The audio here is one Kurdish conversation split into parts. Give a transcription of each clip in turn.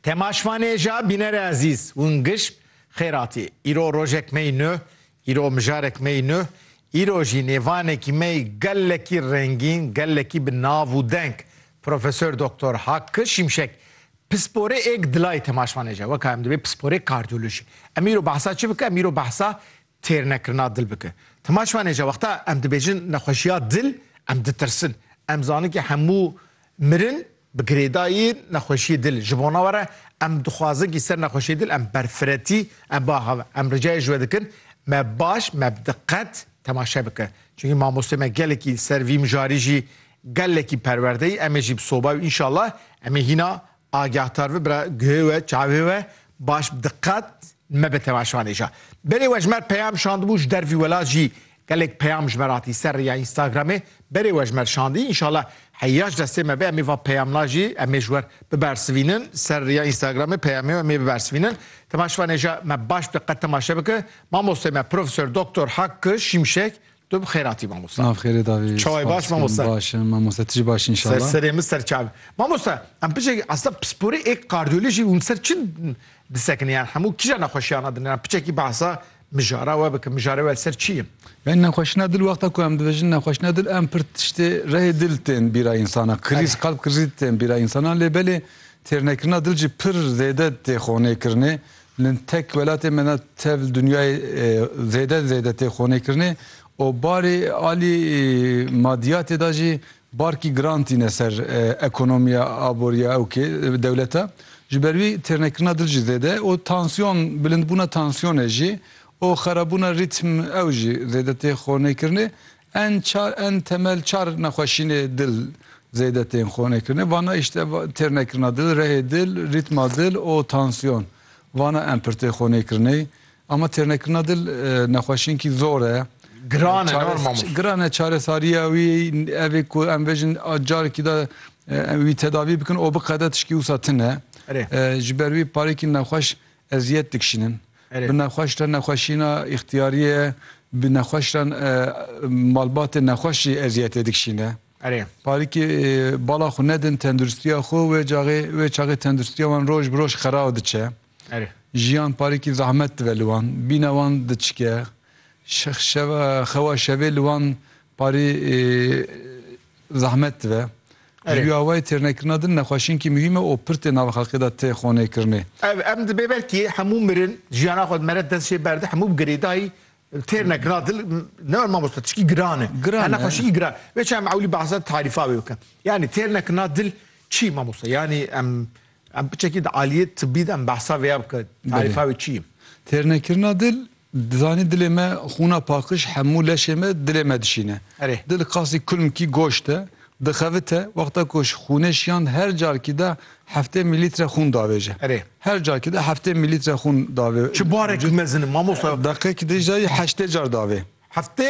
Temaşvanêja bînerê ezîz, win gişt Xêratî, îro rojek me yî nuh, îro mijarek me yî nuh, îro jî nêvanekî me yî gelekî rengîn, gelekî bi nav û deng. Profesor Doktor Hakkı Şimşek, pisporê êk dilayê temaşvanêja, weka em dibê pisporê kardiyolojî. Em îro behsa çi bikin? Em îro behsa têr nekirina dil bike. Tima şiwanê je wexta em dibêjin nexweşiya dil em ditirsin. Em zanin ke hemû mirin bi girêdayî nexweşiyê dil. Ji bona we re em dixwazin ke ser nexweşiyê dil em berfiretî em ba hev. Em ricayê ji we dikin me baş me bi diqet temaşe bike. Çunkî mamosteyê me gelekî li ser vî mijarî jî gelekî perwerdeyî. Em ê jî bi soba û înşallah em ê hîna Agahtar vi bira guhê we, çavê we baş bi diqet mebe temaşanê ja. Berê wejmer peyam şandibû ji dervî welat jî gelek peyam ji me re hatî ser rêya Instagramê. Berê wejmer şandî înşala heya ji destê me be em ê va peyamna jî em ê ji wer bibersivînin. Ser rêya Instagramê peyamê em ê bibersivînin. Temaşvanê ja me baş bi diqet temaşe bike. Mamosteyê me Profesor Doktor Hakkı Şimşek Tu bi xêr hatî mamosta. Nav xêrê davî. Çawa baş mamosta? Baş im mamosta tu jî baş î înşallah. Ser serê min ser çav. Mamosta em piçek esta pisporê ê kardiyolojî hûn ser çi disekine yan hemû kîja nexweşiyana din yan piçekî behsa mijara we bikin mijara we ser çi ye? Yani nexweşina dil wexta ku em dibêjin nexweşina dil em pir tiştê rehê dil tên bîra însana krîz qalb krîz tên bîra însana lê belê têrnekirina dil jî pir zêde tê xonê kirinê Min tek welatê me ne tev li dinyayê zêde zêde tê xonêkirinê û barê alî madiyatê de jî barkî giran tîne ser ekonomiya aboriya ew kê dewlete. Ji ber wî têrnekirina dil jî zêde ye û tansiyon bilindbûna tansiyonê jî û xerabûna rîtm ew jî zêde tê xonêkirinê. En çar en temel çar nexweşînê dil zêde tên xonekirine. Vana îşte têrnekirina dil, rehê dil, rîtma dil û tansiyon. Vana en pir tê xonêkirinê. Ama têrnekirina dil nexweşînkî zor e. Giran e norma mûs. Giran e çaresariya wî evê ku em vejin carekî de wî tedavî bikin û biqede tişkî wisa tune. Ji ber wî parêkî nexweş Eziyet dikişînin. Bi nexweş re nexweşîna îxtiyarî ye. Bi nexweş re malbatê nexweş jî eziyetê dikişîne. Parîkê bala xwe nedin tenduristiya xwe wê caxê wê çaxê tenduristiya wan roj bi roj xerab diçe. Jiyan parîkî zehmet dive li wan. Bîna wan diçike. Şeva xewa şevê li wan parî Bi zehmet dibe. Ji duya wê têrnekirina din nexweşinkî muhîm e û pir tê nava xelkê de tê xonêkirinê. Ev em dibê belkî hemû mirin jiyana xwe mere dest jê berde hemû bi girêdayî têrnekirina din ne were mamosta tişkî giran e. Giran e. Nexweşinkî giran. Vê çem ewlî behsa tarîfa wê bikim. Yanî têrnekirina din çi mamosta? Yanî em Em piçekî di aliyê tibî de em behsa vêya bike, tarîfa wê çi ye? Têrnekirina dil, zanî dilê me xûna paqij hemû leşê me dilê me dişîne. Erê. Dil qasî kulmkî goşt e, dixevite, wexta ku ji xûnê şiyand her carkî de heftê mîlître xûn davêje. Erê. Her carkî de heftê mîlître xûn davê. Çi barek mezin in mamosta? Deqeyekî de jî dayê heştê car davê. Heftê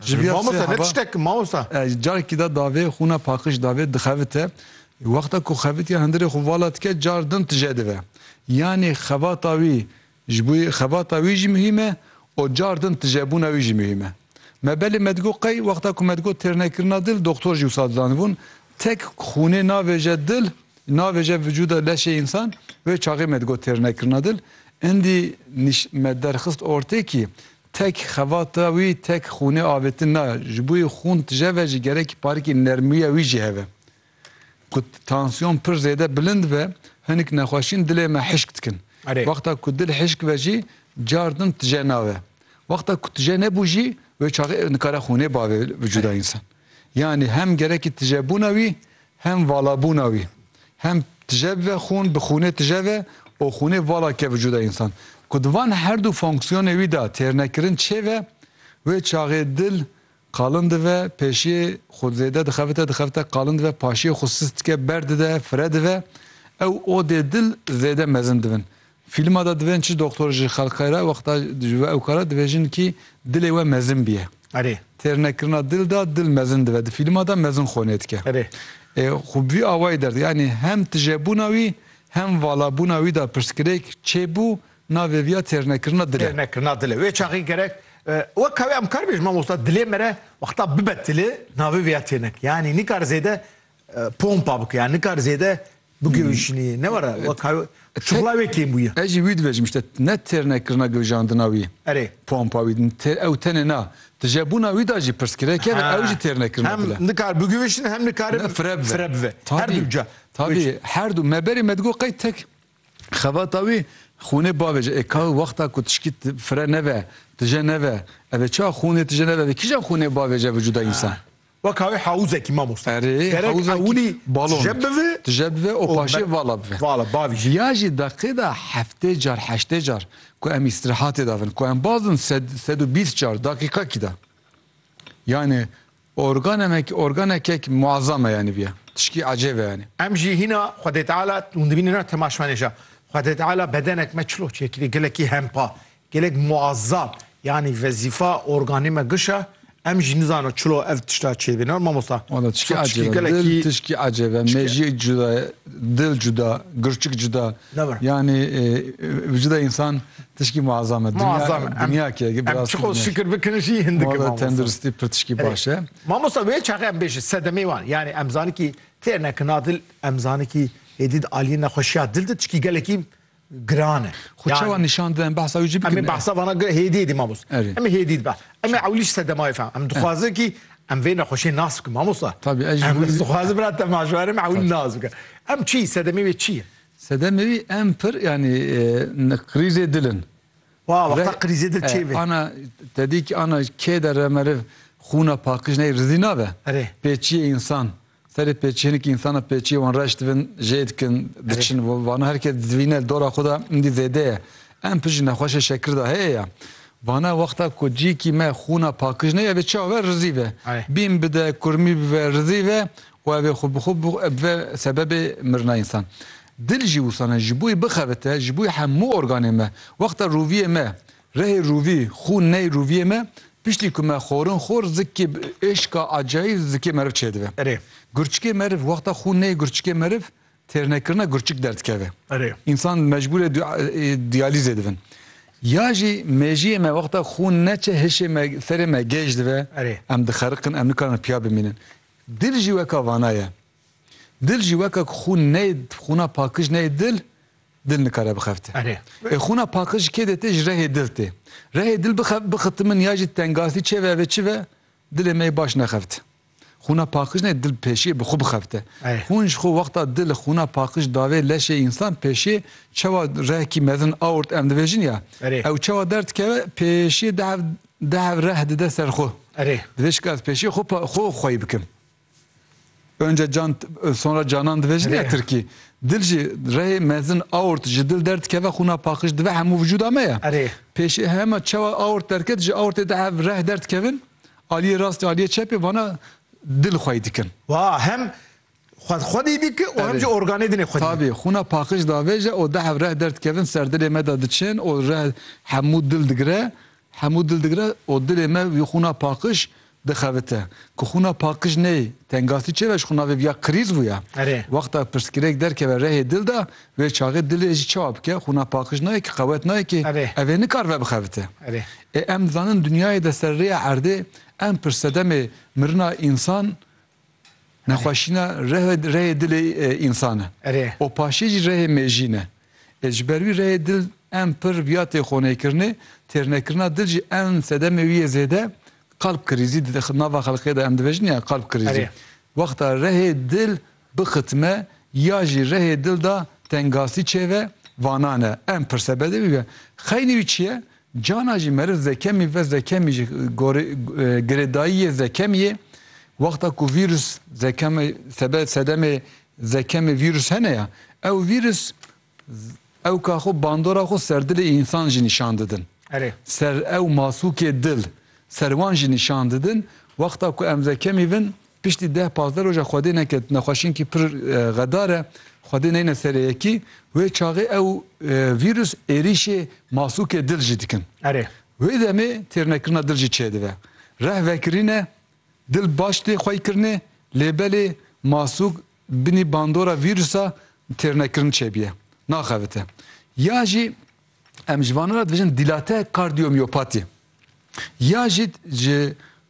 Ji vî ya Mamosta sê ne heba tiştek mamosta. Ji carekî de davê xwûna paqij davê dixevite. Wexta ku xevitiya hundirê xwe vala dike car din tije dive. Yanî xebata wî ji bo xebata wî jî muhîm e û car din tijebûna wî jî muhîm e. Me belê me digot qey wexta ku me digot têrnekirina dil doxtor jî wisa didanibûn tek xwûnê navêje dil navêje vücuda leşê însan wê çaxê me digot têrnekirina dil. Indî nîş me derxist ortê kî Tek xevata wî tek xûnê avêtin na, ji bo wî xûn tije ve jî gerekî parikê nermûya wî jî hebe. Ku tansiyon pir zêde bilind be, hinik nexweşîn dilê me hişk dikin. Wexta ku dil hişk be jî car din tije nabe. Wexta ku tije nebû jî wê çaxê nikare xûnê bavê vicûda însan. Yanî hem gerekî tijebûna wî Hem valabûna wî, hem tije bibe xûn, bi xûnê tije ve û xûnê vala ke vücuda însan. Ku di van her du fonksiyonê wî de têrnekirin çêve, wê çaxê dil qalin dive, pêşiyê xwe zêde dixebite, dixebite qalin dive, paşiyê xwe sis dike, berdide, fire dive. Ew odê dil zêde mezin dibin. Fîlma de divên çi doktor ji xelqê re wexta ji we ew kar e divê jinkî dilê we mezin bîye. Erê. Têrnekirina dil de dil mezin dibe. Di fîlma de mezin xonê dike. Erê. Ê xwe bi vî awayî derdike. Yanî hem tijebûna wî hem valabûna wî de pirsgirêk çê bû navê vî ya têrnekirina dil e. Têrnekirina dil e. Wê çaxê gerek wek ew em karibêjin mamosta dilê me re wexta bibe tili navê vî ya têrnek. Yanî nikare zêde pompa bike. Yanî nikare zêde bigewîşinî ne were şixula wê kêm bûye. Ez jî wî dibêjim îşte ne têrne kirina gewjandina wî pompa wî ew tenê na di jebûna wî da jî pirsgirêk e ve ew jî têrne kirina dil e. Hem nikare bigewîşin hem nikare fire bive her du ca. Tabî her du me berê me digot qey tek xebata wî xûnê bavê ji ê ka wexta ku tişkî fire neve tije neve ev ê çawa xûnê tije neve ev ê kîjan xûnê bavê ji vijûda însan. Weka wê hawuzekî mamoste. Erê, Gerek ewilî tije bivi û paşê vala bivi. Vala, bavî jî. Viya jî deqê de heftê car, heştê car ku em îstîrehatê de bin, ku em baz bin sed, sed û bîst car deqîqekî de. Yanî organemek, organekek muezzam e yanî viya. Tişkî ecêb e yanî. Em jî hîna Xwedê Teala, hûn dibînin na tema şivanê jî ya, Xwedê Teala bedenek me çil o çêkirî, gelekî hempa. Gelek muazzam yanî vezîfa organî me giş e. Em jî nizana çilo ev tişta çêbîna mamosta. Wala tişkî ecêbe dil tişkî ecêbe mejî cuda ye dil cuda girçik cuda yanî vijida însan tişkî muazzam e. Muazzam e dinya ke bi rastî. Em çiqo şikir bikin jî hindik e. Wala tenduristî pir tişkî baş e. Mamosta wê çaxê em bêjin sedemê wan yanî em zanîn kî têrnekina dil em zanîn kî hêdî di aliyê nexweşiya dil de tişkî gelekî giran e. Xwe çawa nîşan dide em behsa wî jî bikin. Em ê behsa vana hêdiyê dî mamost. Em ê hêdî dibe. Em ê ewlî ji sedemayê fam. Em dixwazin kî em vê nexweşiyê nas bikin mamosta. Tabî ez jî em dixwazin bira te maşwara me ewlî nas bikin. Em çi sedemê wê çi ye? Sedemê wî em pir yanî krîzê dil in. Wa wexta krîzê dil çê be. Ana tedî kî ana kê de re meriv xûna pakiş neyê rizî nabe. Erê. Pê çiyê însan. Serê pêçiyên ki însana pêçiyê wan reş dibin, jê dikin, diçin vana her kes divîne li dora xwe de hindî zêde ye. Em pişt ji nexweşê şekir de heye ye. Vana wexta ku cîkî me xûna pakij neye vê çawa ve rizî ve. Bîn bide, kurmî bibe, rizî ve û ev ê xwe bi xwe bibe sebebê mirina însan. Dil jî wisa ne, ji bo wî bixebite, ji bo wî hemû organên me. Wexta roviyê me Rehê rûvî, xû ney rûviyê me, piştî ku me xorin xor zikê bi êşka acayî zikê meriv çêdibe. Erê. Gurçikê meriv, wexta xû ney gurçikê meriv têrnekirina gurçik derdikeve. Erê. Însan mecbûr e diyalîzê dibin. Ya jî mêjiyê me wexta xû neçe hişê me serê me gêj dive, Erê. em dixeriqin, em nikarin piya bimînin. Dil jî weka vana ye. Dil jî weka ku xû ney xûna pakij ney dil, Dil nikare bixefte. Erê. Ê xûna paqij ji kê dete ji rehê dil tê. Rehê dil bixef bixiti min ya jî tengastî çê ve ve çi ve dilê me yê baş nexeft. Xûna paqij ne dil pêşiyê bi xwe bixefte. Xûn ji xwe wexta dil xûna paqij davê leşê însan pêşiyê çewa rehkî mezin aort em dibêjin ya ew çewa derdikeve pêşiyê dehev dehev reh dide ser xwe. Erê. Divê şikast pêşiyê xwe xwe xweyî bikim. Önce can sonra canan dibêjin ya Tirkî. Dil jî rehê mezin aort ji dil derdikeve xûna paqij dibe hemû vijûda me ya. Erê. Pêşê hema çawa aort derket ji aortê de hev reh derdikevin aliyê rastê aliyê çepê vana dil xwey dikin. Wa hem xwe xwedî dike û hem jî organê dinê xwedî. Tabî xûna paqij davêje û de hev reh derdikevin serdilê me de diçin û reh hemû dil digire Hemû dil digre û dilê me wî xwûna paqij dixevite. Ku xwûna paqij neyê, tengasî çêve ji xwe navê viya krîz bûye. Wexta pirsgirêk derkeve rehê dil de, wê çaxê dilê jî çawa bike? Xwûna paqij nayê ki, qewet nayê ki, ev ê nikar vebixevite. Ê em dizanin dinyayê de ser rêya erdê em pirsedemê mirina însan Nexweşîna reh rehê dilê însan e. Erê. Û paşê jî rehê mêjî ne. Ê ji ber wî rehê dil en pir viya têxoneykirinê, têrnekirina dil jî en sedemê wî yê zêde kalp kirîzî di nava xelkê de em dibêjin ya kalp kirîzî. Erê. Wexta rehê dil bixitime ya jî rehê dil da tengasî çêve, vanan e. En pir sebedê wî be. Xeynî wî çi ye? Cana jî meriv zekemî ve zekemî ji gorî girêdayiyê zekemî yê. Wexta ku vîrus zekemê sebe sedemê zekemê vîrus hene ya, ew vîrus ewka xwe bandora xwe ser dilê însan jî nîşan didin. Erê. Ser ew masûkê dil, ser wan jî nîşan didin. Wexta ku em zekemî vin Piştî deh pazdeh roja Xwedê neket nexweşiynkî pir xedar e, Xwedê neyne serê yekî, wê çaxê ew vîrus êrîşê masûkê dil jî dikin. Erê. Wê demê têrnekirina dil jî çêdive. Reh vekirîne, dil baş tê xweykirinê lê belê masûk binî bandora vîrusa têrnekirin çêbiye, naxevite. Ya jî em ji vana re dibêjin dilate kardiyomiyopatî ya jî ji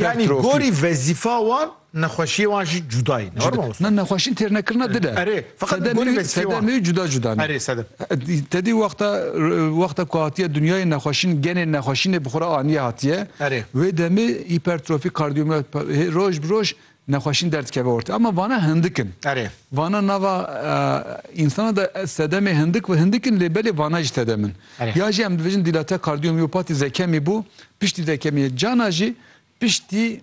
Yani gorî vezîfa wan nexweşiyê wan jî cuda ye. Na nexweşî têrnekirina dil e. Erê feqet gorî vezîfeyê wan. Sedemê wî cuda cuda ne. Erê sedem. Te dî wexta wexta ku hatiye dinyayê nexweşîn genê nexweşînê bi xwe re aniye hatiye. Erê. Wê demê hîpertrofî kardiyomiyopati roj bi roj Nexweşîn derdikeve ortê. Ama vana hindik in. Erê. Vana nava insana de sedemê hindik ve hindik in lê belê vana jî sedem in. Erê. Ya jî em dibêjin dîlate kardiyomîopatî zekemî bû piştî zekemîyê cana jî piştî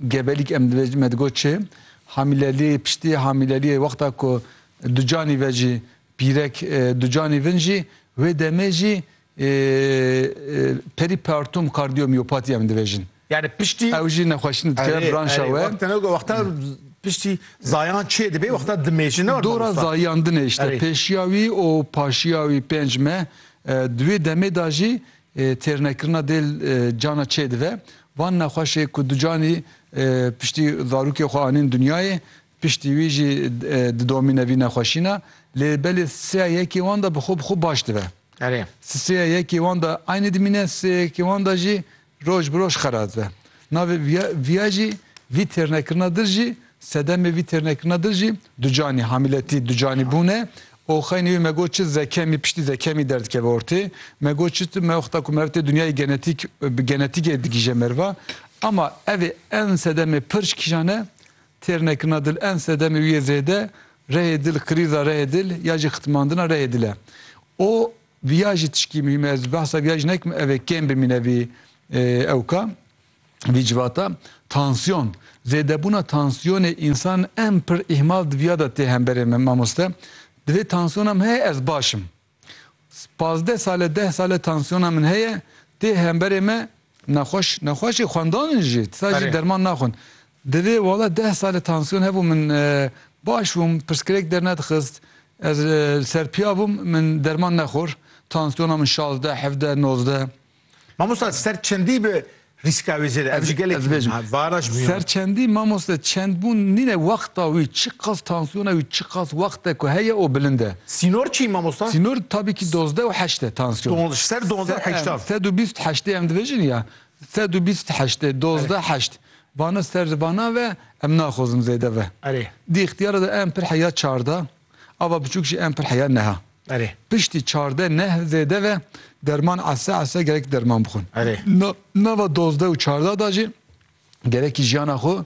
gebelîk em dibêjin me digot çi hamîlelî piştî hamîlelîyê wexta ku di canî ve jî Pîrek Ducanî Vin jî wê demê jî perîpertum kardiyomîyopatî em dibêjin. Yanî piştî Ew jî nexweşîn dike branşa we. Wexta ne wexta piştî zayan çê dibê wexta dimêjin ne Dora zayan dine îşte pêşiya wî û paşiya wî pênc me di wê demê de jî têrnekirina dêl cana çê dive. Van nexweşê ku Ducanî piştî zarokê xwe anîn dinyayê Piştî wî jî didomîne vî nexweşîna lê belê sêya yekê wan de bi xwe bi xwe baş dibe. Erê. Sêya yekê wan de aynî dimîne, sêya yekê wan de jî roj bi roj xera dibe. Navê vîya vîya jî vî têrnekirina dir jî sedemê vî têrnekirina dir jî ducanî, hamîletî, ducanî bûn e û xeynî wî me got çi zekemî piştî zekemî derdikeve ortê. Me got çi tu me wexta ku meriv tê dinyayê genetîk bi genetîkê digîje meriva. Ama evê en sedemê pirc kîjan e? Têr nekirina dil en sedemê wî yê zêde rehê dil, krîza rehê dil ya jî xitmandina rehê dil e. O viya jî tişkî muhîm e. Ez behsa viya jî nekim ev ê kêm bimîne vî ewka, vî civata. Tansiyon. Zêdebûna tansiyonê însan en pir îhmal di viya de tê hemberê min mamoste. Divê tansiyonam heye ez baş im. Pazdeh sale deh sale tansiyona min heye, tê hemberê me nexweş nexweşê xwendan in jî disa jî derman naxwin. Divê wala deh sale tansiyon hebû min baş bûm pirsgirêk dernedixist ez li ser piya bûm min derman nexwir tansiyona min şazdeh hevdeh nozdeh Mamosta ser çendî bi rîska wê zêde ev ji gelek ez bêjim varaş bû. Ser çendî mamosta çend bûn nîne wexta wî çiqas tansiyona wî çiqas wexte ku heye o bilind e. Sînor çi mamosta? Sînor tabi ki dozdeh û heşt e tansiyon. Ser dozdeh heşta. Sed û bîst heştê em dibêjin ya sed û bîst heştê dozdeh heşt vana ser vana ve em naxwazin zêde ve. Erê. Di îxtiyara de em pir heya çarda. Ava biçûk jî em pir heya neha. Erê. Piştî çardeh neh zêde ve derman ese ese gerek derman bixwin. Erê. Na, nava dozdeh û çardeh da jî gerekî jiyana xwe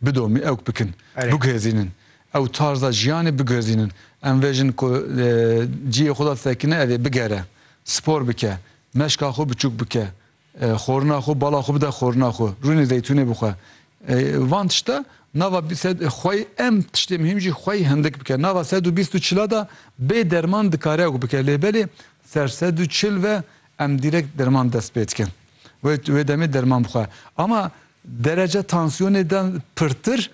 bidomî ewk bikin, Erê. biguhêzînin. Ew tarza jiyanê biguhêzînin. Em vê jin ku e, cihê xwe da sekine evê bigere, spor bike, meşka xwe biçûk bike, Xorina xwe, bala xwe bide xorina xwe, rûnê zeytûnê bixwe. Van tişta nava xwey em tiştê mihîm jî xwey hindik bike. Nava sed û bîst û çila de bê derman dikare ew bike lê belê ser sed û çil ve em dîrek derman dest pê dikin. Wê wê demê derman bixwe. Ama derece tansiyonê de pirtir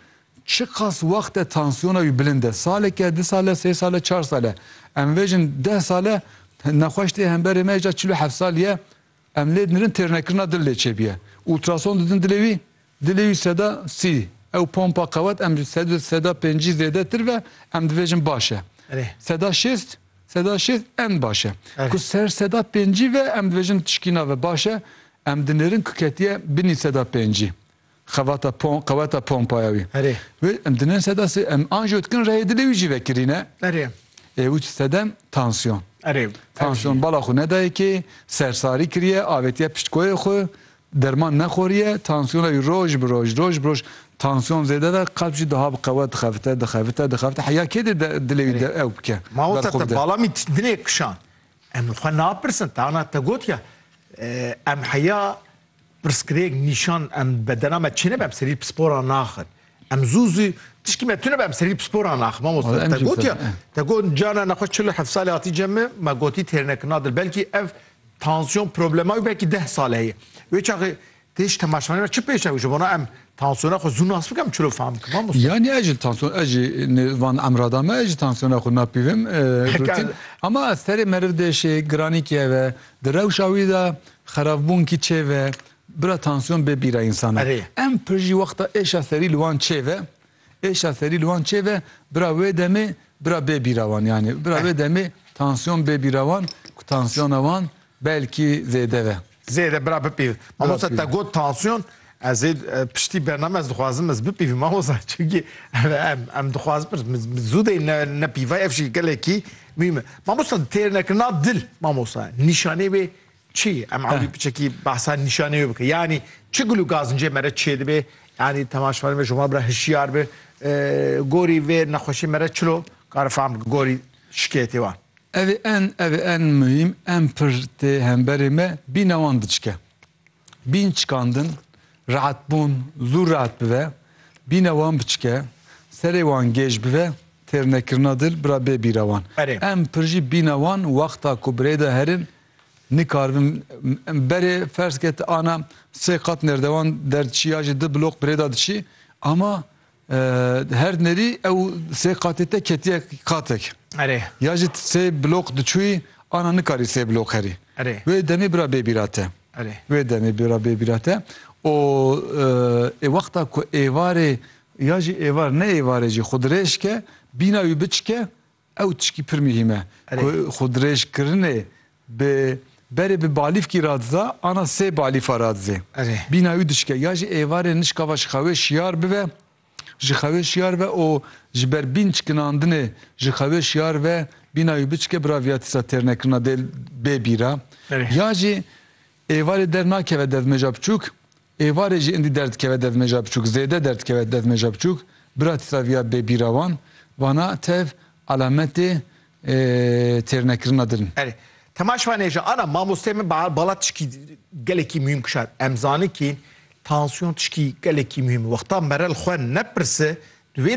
çiqas wext e tansiyona wî bilind e. Saleke, du sal e, sê sal e, çar sal e. Em vêjin deh sal e nexweş tê hemberê me jî çil û heft sal ye Em lê dinêrin têrnekirina dil lê çêbiye. Ultrason didin dilê wî, dilê wî seda sî, ew pompa qewet em ji sedû seda pêncî zêdetir ve em dibêjin baş e. Seda şêst, seda şêst en baş e. Ku ser seda pêncî ve em dibêjin tişkîna ve baş e, em dinêrin ku ketiye binî seda pêncî. Xevata pom, qeweta pompaya wî. Erê. Wê em dinin seda sê, em anjiyo dikin reyê dilê wî jî vekirîne. Erê. Ê wî sedem tansiyon. Erê. Tansiyon bala xwe nedayê kê, sersarî kiriye, avêtiye pişt koyê xwe, derman nexweriye, tansiyona wî roj bi roj, roj bi roj, tansiyon zêde ve, qelb jî diha bi qewet dixevite, dixevite, dixevite, heya kê dê de dilê wî de ew bike, berxwe bide. Mamosta te bala min dilê kişand. Em li xwe napirsin, te ana te gotiya, em heya Pirsgirêk nîşan em bedena me çêne be em serî pispora naxin. Em zû zî tişkî me tune be em serî pispora naxin. Mamoste te gotiya te got cana nexweş çil û heft salê hatî cem me me gotî têrnekirina dil belkî ev tansiyon problema wî belkî deh sal heye. Wê çaxê têj temaşvanê me çi pêş ew ji bona em tansiyona xwe zû nas bikim çilo fam bikim mamoste. Yanî ez jî tansiyon ez jî van emrada me ez jî tansiyona xwe napîvim rutin ama ez serê meriv de şê giranî keve di rewşa wî de Xerabûn kî çê ve, bira tansiyon bê bîra însanan. Em pir jî wexta êşa serî li wan çê ve, êşa serî li wan çê ve, bira wê demê bira bê bîra wan yanî bira wê demê tansiyon bê bîra wan ku tansiyona wan belkî zêde ve. Zêde bira bipîv. Mamosta te got tansiyon, ez ê piştî bername ez dixwazim ez bipîvim mamosta çunkî em em dixwazim pir zû de ne nepîvay ev jî gelekî mîm e. Mamosta têrnekirina dil mamosta nîşanê wê Çi? Em ewlî piçekî behsa nîşanê wê bike. Yanî çi gul û gazincê me re çê dibe? Yanî temaşevanê me ji wan re hişyar be. Gorî vê nexweşê me re çilo kare fam bike gorî şikêyetê wan. Ev ê en ev ê en muhîm en pir tê hemberê me bîna wan diçike. Bîn çikandin, reetbûn zû reet bibe, bîna wan biçike, serê wan gêj bibe, têrnekirina dil bira bê bîra wan. Em pir jî bîna wan wexta ku birêda herin nikaribin berê ferz ke ti ana sê qat nêrdewan derdiçî ya jî di bloq birêda diçî ama Her nerî ew sê qatê te ketiye qatek. Erê. Ya jî sê blok diçûyî ana nikarî sê blok herî. Erê. Wê demê bira bêbîra te. Erê. Wê demê bira bêbîra te û ê wexta ku êvarê ya jî êvar ne êvarê jî xwe dirêj ke, bîna wî biçike, Ew tişkî pir muhîm e ku xwedirêjkirinê bi berê bi balîfkî radiza ana sê balîfa radizê. Bîna wî dişik e. Ya jî êvarê nişka va ji xewê şiyar bibe, ji xewê şiyar be û ji ber bîn çikinandinê ji xewê şiyar be, bîna wî biçike bi ra viyatîsa têrnekirina dê bê bîra. Ya jî Êvarê der nakeve devmeja biçûk, êvarê jî indî derdikeve devmeja biçûk, zêde derdikeve devmeja biçûk, bira tîsaviya bê bîra wan, vana tev alametê têrnekirina din in. Erê, Temaş vanê jî ana mamosteyê min bala tişkî gelekî muhîm kişand, em zanin kî tansiyon tişkî gelekî muhîm in, wexta mere li xwe nepirse di wê.